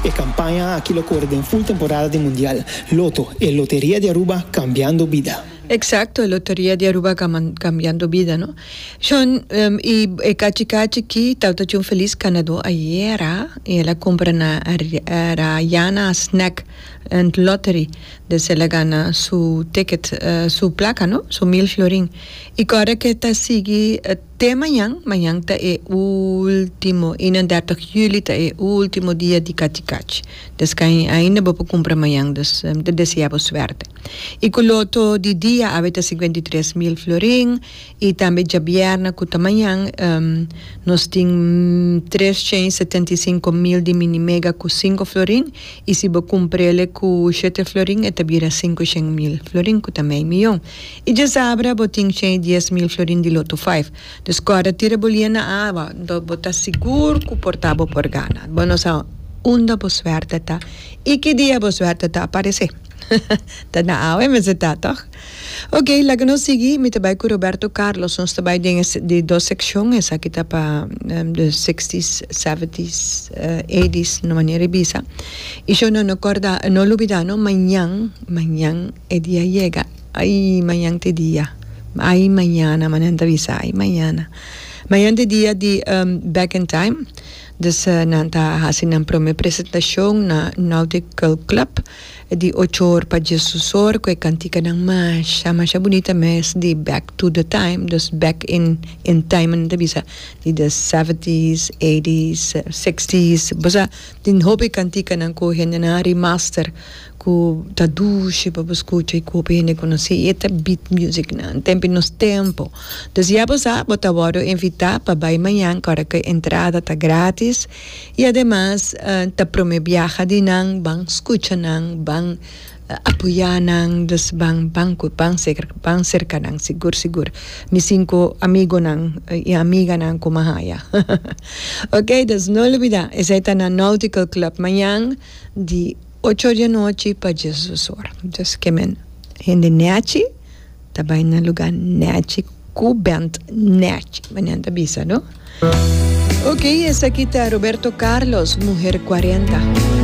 E kampaña aki lo kore den ful temporada di Mundial. Loto, e loteria di Aruba kambiando bida. Eksakto, e loteria di Aruba kambiando bida, no? Shon, i e kachi kachi ki tabata cu un felis kanadó ayera i el a kumpra na Rayana Snack and Lottery des el a gana su ticket, su plaka, no? Su mil florin. I ku ora ke ta sigui. Te mañan, mañan ta e ultimo, i na dèrtig juli ta e ultimo dia di kachi kachi. Des kain ainda bo por kumpra mañan, dus mi ta deseá bo suerte. I ku loto di dia awe ta sikuenta i tres mil florin, i tambe djabièrna ku ta mañan nos tin tres shen i setenta i sinku mil di mini mega ku sinku florin, i si bo kumpr'e le ku shete florin e ta bira sinku shen mil florin ku ta mei miyon. I djezabra bo tin shei dies mil florin di loto five. Dus kòrda tira bo lie na awa, dor bo ta sigur ku por ta bo por gana. Bo no sa unda bo suerte ta i ki dia bo suerte ta aparesé. Ta na awa e mester ta, tòg? Ok, laga nos sigui. Mi ta bai ku Roberto Carlos. Nos ta bai den e di dos sekshon. Esaki ta pa de sixties, seventies, eighties, no mania di bisa. I shon no no kòrda, no lubidá no, mañan, mañan. E dia yega, ai mañante dia, ai mañana, ma nan ta bisa ai mañana. Mañante dia di Back in Time, dus nan ta hasi nan prome presentashon na Nordic Girl Club di ocho or pa dies usor ku e kantikanan masha masha bunita mes di Back to the Time, dus Back in in Time nan ta bisa di the seventies, eighties, sixties, bosa tin hopi kantikanan ku hendenan a remaster ku ta dushi pa bo skucha i ku hopi hende konosí i e ta beat music nan tempi nos tempu dus ya bo sa bo ta wòrdu invitá pa bai mañan ku ora ku e entrada ta grátis i ademas ta promé biaha di nan ban skucha nan ban apoyá nan dus ban ban ku ban seker ban serka nan sigur sigur mi sinku amigonan i amiganan ku mi a haya oke dus no olbidá esei ta na Nautical Club mañan di. Ocho di anochi pa Jesus ora. Just ke men hende nèchi ta bai na lugá nèchi ku bènt nèchi, manera nan ta bisa, no? Oke, esaki ta Roberto Carlos, Muher Kuarenta.